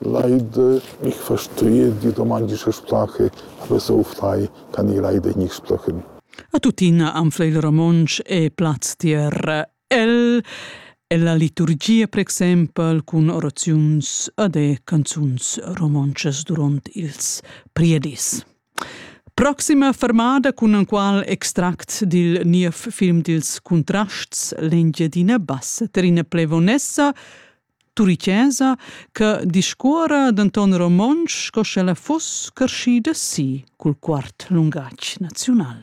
Lai dë mich verstrie die romantische Sprache, aber so frei kann ich leider nicht sprechen. A tuttina anfla il romontsch e plaz tier el e la liturgia, per exempel, cun oraziuns ad e canzuns romontschas durant ils priedis. Proxima fermada cun en qual extract dil niev film dils Contrasts l'Engiadina Bassa Trine Plevonessa Turicesa che discuora denton romontsch sco sch'ella fuss carschida si cul quart lungatg naziunal.